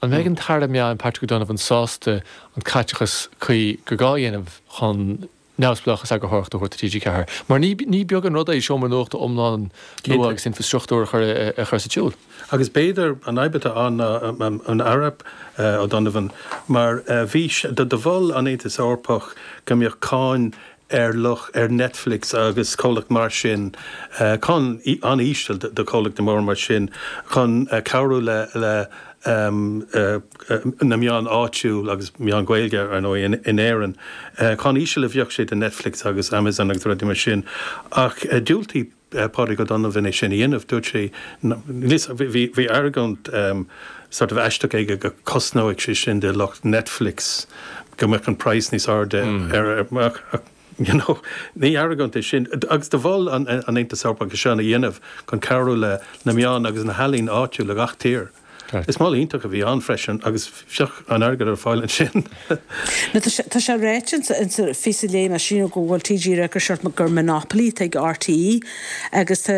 An mbeidh an tAire Meáin Patrick O'Donovan sásta an caiteachas cuí gur gá a dhéanamh chun neamhspleáchas eagarthóireachta a thabhairt do TG4? Mar ní beag an rud é seomra nuachta iomlán nua agus infreastruchtúr a chur sa tsiúl. Agus b'fhéidir an fhadhb atá ann ná an Aire O'Donovan mar bhís do mhol an Aontas Eorpach go mbeadh cáin ar lucht ar Netflix agus comhlacht mar sin, cáin an-íseal do chomhlachta móra mar sin, chun cabhrú le na meáin áitiúil agus meáin Ghaeilge, ar ndóigh, in Éirinn. Cáin íseal a bheadh sé do Netflix agus Amazon agus rudaí mar sin ach dhiúltaigh Pádraig O'Donovan é sin a dhéanamh. Dúirt sé bhí argóint sort of aisteach aige go cosnódh sé sin do lucht Netflix go mbeadh an praghas níos airde ar ach you know ní argóint é sin agus do mhol an Aontas Eorpach é seo a dhéanamh chun cabhrú le na meáin agus na healaíona áitiúil i gach tír. Is moladh iontach a bhí ann freisin agus bheadh an airgead ar fáil ansin. Nó tá sé ráite ins an phíosa a léigh mé ansin go bhfuil TG4 ag rá gur Monopoly atá ag RTÉ agus tá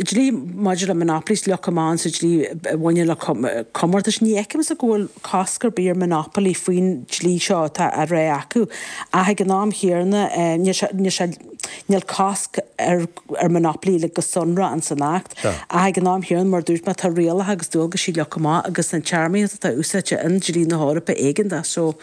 dlí maidir le monopolies leagtha amach sa dlí a bhaineann le comórtais. Ní fheicimse go bhfuil cosc ar bith ar Monopoly faoin dlí seo atá á rá acu ach ag an am chéanna níl sé Níl cosc ar monopoly luaite go sonrach ins an Acht, ach ag an am chéanna, mar a dúirt mé, tá rialacha agus dualgaisí leagtha amach agus an téarmaíocht atá úsáidte i ndlí na hEorpa éigeantach so.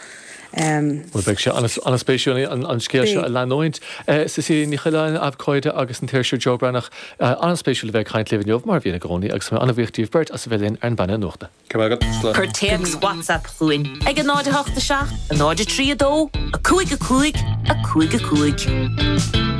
Bhuel, beidh sé an-spéisiúil an scéal seo a leanúint. Cecilia Ní Choileáin, abhcóide, agus an t-iriseoir Joe Breathnach, an-spéisiúil a bheith ag caint libh inniu, mar a bhíonn i gcónaí, agus tá mé an-bhuíoch díbh beirt as a bheith linn ar an bPainéal Nuachta. Go raibh maith agat, slán. Cuir téacs WhatsApp chugainn ag a 0 8 7 a 0 3 2 a 5 a 5 a 5 a 5.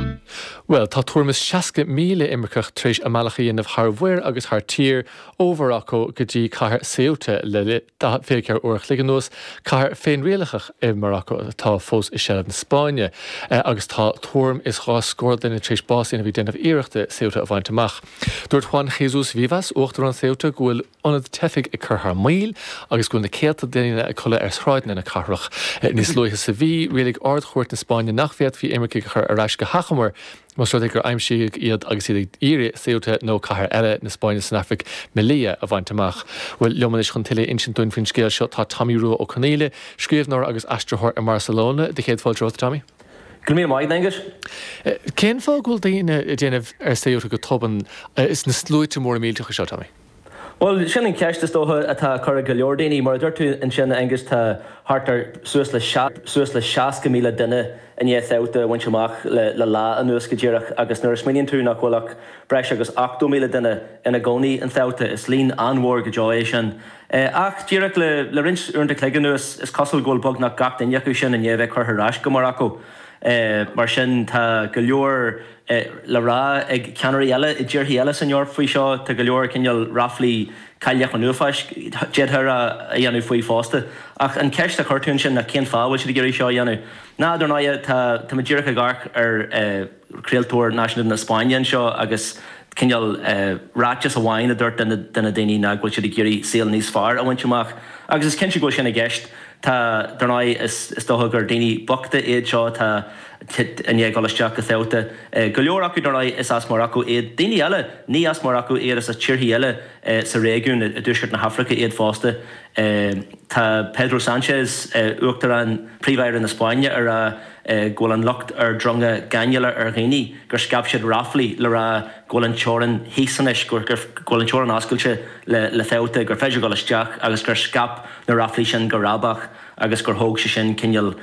Bhuel, tá tuairim is 60,000 imirceach tar éis a mbealach a dhéanamh thar mhuir agus thar tír, ó Mharacó go dtí cathair Ceuta le 24 uair a chloig anuas, cathair féinrialaitheach i Maracó atá fós i seilbh na Spáinne, agus tá tuairim is dhá scór duine tar éis bás a fháil a bhí ag déanamh iarrachta Ceuta a bhaint amach. Dúirt Juan Jesús Vivas, uachtarán Ceuta, go bhfuil. ionad teifigh ag cur thar maoil agus go bhfuil na céadta daoine ag codladh ar shráideanna na cathrach. Níos luaithe sa mhí, rialaigh Ard-Chúirt na Spáinne nach bhféadfaí imircigh a chur ar ais go hachomair más rud é gur aimsíodh iad agus iad ag iarraidh Ceuta nó cathair eile na Spáinne san Afraic, Melilla, a bhaint amach. Bhuel, liom anois chun tuilleadh a insint dúinn faoin scéal seo tá Tomaí Rua Ó Conghaile, scríobhnóir agus aistritheoir i mBarcelona. Do chéad fáilte romhat, a Thomaí. Go raibh míle maith a'd, Aengus. Cén fáth go bhfuil daoine ag déanamh ar Ceuta go tobann, sna sluaite móra millteacha seo, Tomaí? Bhuel, sin an cheist, is dócha, atá á cur ag go leor daoine. Mar a dúirt tú ansin, a Aonghus, tá thart ar suas le 60,000 duine i ndiaidh Ceuta a bhaint amach le lá anuas go díreach agus nuair a smaoiníonn tú nach bhfuil ach breis agus 80,000 duine ina gcónaí in Ceuta, is líon an-mhór go deo é sin. Ach díreach le roinnt uaireanta cloig anuas, is cosúil go bhfuil beagnach gach duine acu sin i ndiaidh a bheith curtha ar ais go Maracó. Mar sin, tá go leor. le rá ag ceannairí eile i dtíorthaí eile san Eoraip faoi seo. Tá go leor cineál ráflaí cailleach an uafáis, d'fhéadfá a rá, á dhéanamh faoi fosta. Ach an cheist a chuir tú ansin ná cén fáth a bhfuil siad ag iarraidh seo a dhéanamh? Ná, dar ndóigh, tá, tá mé díreach ag amharc ar chraoltóir náisiúnta na Spáinne anseo agus cineál ráiteas amháin a dúirt duine de na daoine ná go bhfuil siad ag iarraidh saol níos fearr a bhaint amach. Agus is cinnte go bhfuil sin i gceist. Tá, dar ndóigh, is, is dócha gur daoine bochta iad seo, tá, siad i ndiaidh dul isteach go Ceuta. Go leor acu dar ndóigh is as Maracó iad. Daoine eile, ní as Maracó iad is as tíorthaí eile sa réigiún i dtuaisceart na hAfraice iad fosta. Tá Pedro Sánchez, Uachtarán, Príomh-Aire na Spáinne ag rá go bhfuil an locht ar dronga gáinneála ar dhaoine, gur scaip siad ráflaí, le rá go bhfuil an teorainn thíos anois, go bhfuil an teorainn oscailte le Ceuta, gur féidir dul isteach agus gur scaip na ráflaí sin go rábach. agus gur thóg sé sin cineál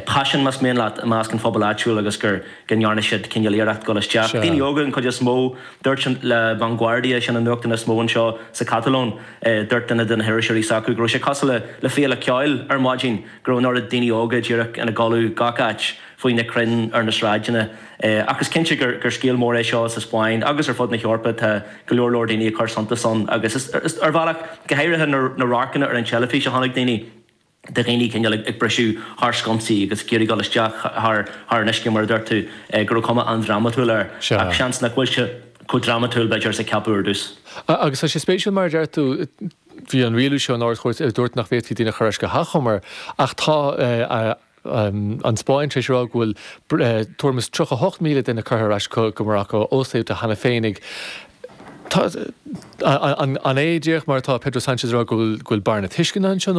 paisean, más mian leat, i measc an phobail áitiúil agus gur go ndearna siad cineál iarracht dul isteach. Daoine óga an chuid is mó, dúirt La Vanguardia, sin an nuachtán is mó anseo sa Chatalóin, dúirt duine de na hiriseoirí s'acu go raibh sé cosúil le féile ceoil ar maidin, go raibh an oiread daoine óga díreach ina gcodladh gach áit faoi na crainn ar na sráideanna. Ach is cinnte gur scéal mór é seo sa Spáinn agus ar fud na hEorpa, tá go leor leor daoine ag cur suntas ann agus is ar bhealach, go háirithe na radharcanna ar an teilifís a chonaic daoine. de dhaoine cineál ag briseadh thar sconsaí agus ag iarraidh dul isteach thar an uisce mar a dúirt tú, go raibh cuma an-drámatúil air. Ach seans nach bhfuil sé chomh drámatúil, b'fhéidir, is a ceapadh ar dtús. Agus tá sé spéisiúil mar a deir tú, bhí an rialú seo in Ard-Chúirt a dúirt nach bhféadfaí daoine a chur ar ais go hachomair ach tá an Spáinn tar éis a rá go bhfuil tuairim is 38,000 duine curtha ar ais go Maracó ó Ceuta cheana féin. An é, díreach mar atá Pedro Sanchez ag rá, go bhfuil bearna tuisceana anseo?